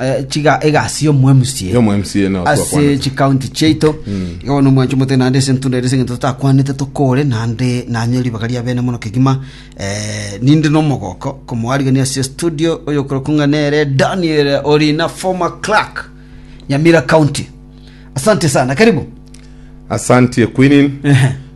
eh, chiga egasi y'omoemsie Y'omoemsi eno ase twakwanete. chikaunti chiaito igo bono omwancho mote naende ase entunda ere ase eng'encho totakwanete tokore naende nanye ribaga ria bene mono kegima eh, ninde nomogoko komoarigania ase studio oyokorokwa ng'a nere daniel orina former clerk nyamira county asante sana karibu Asante Queen. Ehe.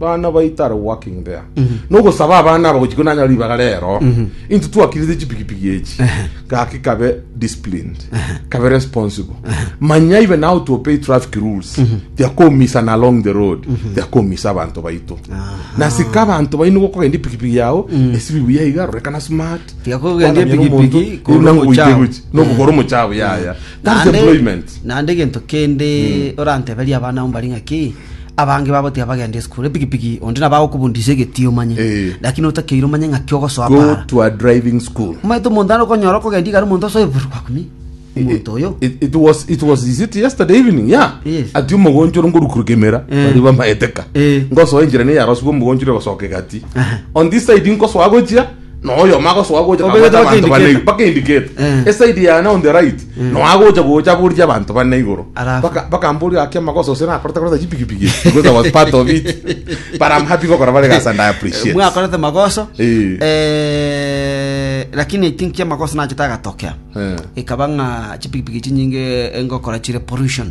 Bana baito are working there. Nogosaba abana aba gochia konanya ribaga rero. Into twakirite chipikipiki echi. Gaki kabe disciplined. Kabe responsible. Manya even how to obey traffic rules. Tia komisana along the road. Tia komisa abanto baito. Nasika abanto baino gokogenda ipikipiki yao esibi buya iga rorekana smart. Tia kogenda Kwanamia ipikipiki nomonto, iri korwa nango goite omochao. gochi. Nokogora omochao yaya. That's Naende- employment. naende egento kende oranteberie abana abo mbare ng'aki Abange babo tiabagendi esukuru, epikipiki, onde nabo agokobundisa egetii omanye, Eh. lakini otakeire omanye ng'aki ogosoa Go para. to a driving school. Omanyete omonto are okonyora okogenda igare omonto asoe buru bakumi. Omonto oyo. It, it was it was is it yesterday evening yeah Yes. ati omogonchoro ngorukuruka emera Eh. bari bamaeteka Eh. ngosoa enjira ne yaroswa omogonchoro gosoka egati Aha. on this side nkosoa gochia Noyomo agosoa gocha Obere akabwate abanto bane bakindikete. igoro, mpaka indikete Eh. eside yane on the right no agocha gocha aboririe abanto bane igoro Alafu? Baka- bakamboria gaki amagoso ase nakorete koreta chipikipiki ese, because I was part of it but I'm happy gokora bare egasi and I appreciate mwakorete magoso Eh. eh, lakini i think chiamagoso nachete agatokea Eh. ikaba ng'a chipikipiki chinyinge engokora chire pollution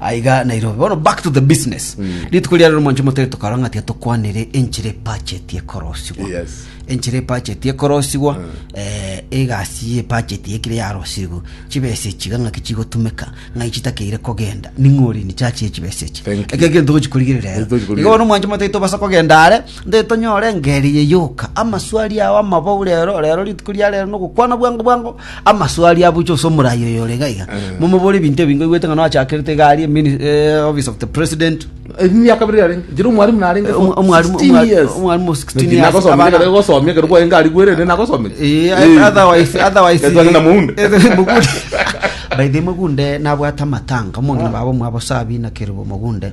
Aiga Nairobi. Bono back to the business. Rituko ria rero mwancho motari tokarora ng'a tiga tokwanire enchera epacheti ekorosigwa. Yes. Enchera epacheti ekorosigwa eh, egasi y'epacheti ekire yarosirwe. Chibesa echiga ng'aki chigotumeka, ng'ai chitakeire kogenda. Ning'o ore nichachi echibesa echi. Thank you. Eke egento togochi korigereria rero. Togochi korigereria. Igo bono mwancho motari tobasa kogenda are, nde tonyore engeri eye yoka. Amaswali ao amabao rero, rero rituko ria rero nogokwana bwango bwango, amaso aria abuche ase omorai oyo ore iga iga momobore ebinto ebi ngoigwete ng'a noachakerete iga aria mini- eh, office of the president emiaka bire yarenge njere omwarimu narenge Eh, omo- omwarimu- 16 omwa- years. omwarimu o 16 Naki years, nagosomire abana- ekero gosomia ekero bwaye ngari bwerere nagosomire Eh, Eh. otherwise- otherwise- Etwa ng'ina mounde. Eh, mogunde. By the way, mogunde nabwate amatanga omong'ina baba omwabo sabina keribo mogunde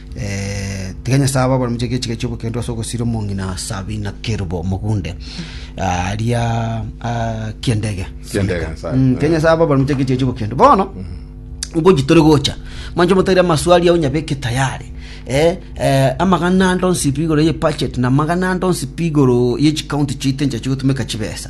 Tiga Nyasae abe aborometie egechiika ki'obokendo ase ogosira omong'ina Sabina Kerubo Omogunde aria ah, kiendege Kiendege, Nyasae. Mm, Tiga Nyasae abe aborometie egechiika ki'obokendo bono ngoji tore gocha manche motaire amaswali ao nyabeke tayari eh, eh, amagana ande onsi pi igoro ye budget na amagana ande onsi pi igoro ye chikaunti chiaito enchera chigotumeka chibesa